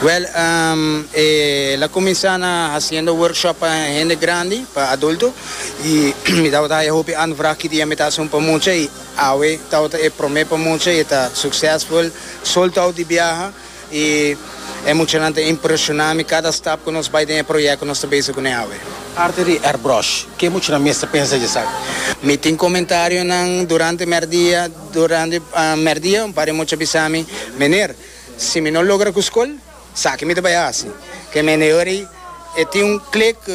Well ehm e la cuminsa na haciendo workshop pa hende grandi pa adulto y mi tabata haya hopi ant vraag ki dia mi ta hacion pa mucha y awe tabata e prome pa mucha y ta succesful soltao di biaha y e muchanan ta impresiona mi cada stap cu nos bay den e project cu nos ta bezig cune awe. Arte di airbrush ke muchanan mester pensa di esaki? Mi tin comentarion nan durante merdia durante merdia un par di mucha bisa mi meneer. Si mi no logra ku skol, sa ke mi ta bai hasi. Ke mendedor ei, e tin un klik ku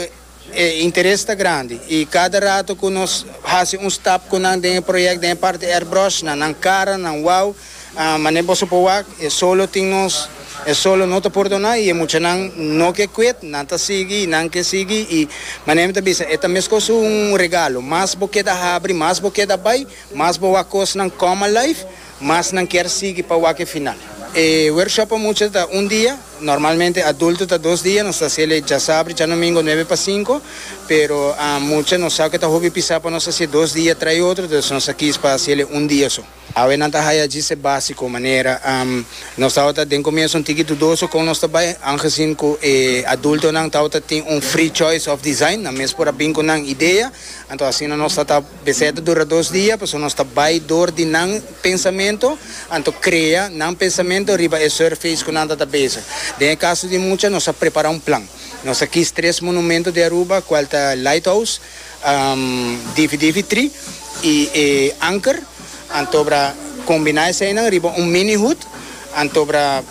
e interes ta grandi i kada rato ku nos hasi un stap ku nan den e proyèkt den e parti airbrush na nan kara, nan wou, manera boso por wak e solo tin nos, e solo no ta pordoná i e muchanan no ke kwit, nan ta sigui i nan ke sigui i manera mi ta bisa e ta meskos un regalo, mas bo keda habri, mas bo keda bai, mas bo wak kosnan kòm alive. Mas nan kier sigui pa wak e final. E workshop pa mucha ta un dia, normalmente adulto ta dos dia, nos ta haciel e djasabri, djanomingo nuebe pa cinco, pero mucha nos sab ke ta hopi pisa pa nos hacie dos dia trai otro, entonces nos a kies pa haciel e un dia so. Awe nan ta haya djise basico manera nos tabata den comienzo un tiki dudoso con nos ta bay, angezien cu e adultonan tabata tin un free choice of design, nan mes por a bin cu nan idea, anto asina nos ta ta. Beseta dura dos dia, pasobra nos ta bai dor di nan pensamentu, anto krea nan pensamentu riba e surface ku nan ta ta bezig. Den e kaso di mucha, nos a prepará un plan. Nos a kis tres monumentu di Aruba, kual ta Lighthouse, Difi Difi Tri i e Anker. Antobra kombiná eseinan riba un mini hut. Antobra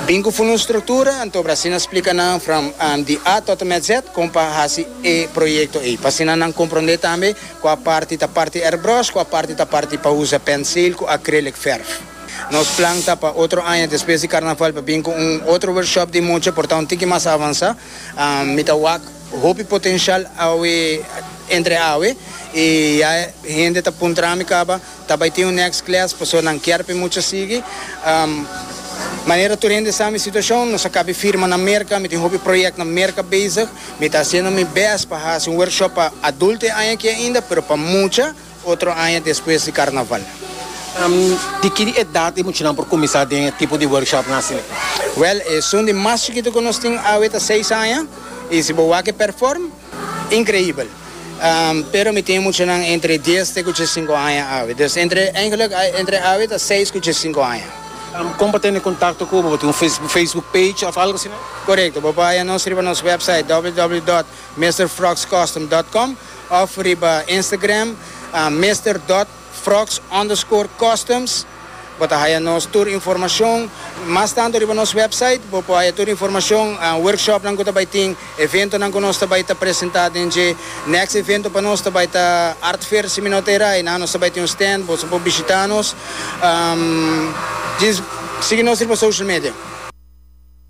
Bin ku funda un struktura, anto Brasina splika nan from di A tot en met Z kon pa hasi e proyekto ei. Pa asina nan komprondé tambe kua parti ta parti airbrush, kua parti ta parti pa usa pensil ku acrylic verf. Nos plan ta pa otro aña despues di karnaval pa bin ku un otro workshop di mucha por ta un tiki mas avansá. Mi ta wak hopi potenshal awe entre awe i ya hende ta puntrami kaba, Ta bay tin un next class paso nan kier pe mucha sigui. Manera tur hende sa mi situacion, nos a cabe firma na Merca, mi tin hopi project na Merca bezig, mi ta haciendo mi best pa haci un workshop pa adulto e aña aki ainda, pero pa mucha otro aña despues di carnaval. Di ki edad e muchanan por cuminsa den e tipo di workshopnan asina? Wel, esun di mas chikito cu nos tin awe ta seis aña, y si bo wak e perform. Increibel. Pero mi tin muchanan entre dies te cu djessinku aña awe. Dus entre, eigenlijk entre awe ta seis cu djessinku aña. Con pa tene contacto cu bo? Bo tin un Facebook page of algo asina? Corecto. Bo por haya nos riba nos website www dot mister frogs custom dot com of riba Instagram mister dot. Frox underscore customs bo ta haya nos tur informacion mas tanto riba nos website bo por haya tur informacion workshopnan cu ta bay tin eventonan cu nos ta bay ta presenta den dje next evento pa nos ta bay ta art fair si mi no ta eray na nos ta bay tin un stand boso por bishita nos sigui nos riba social media.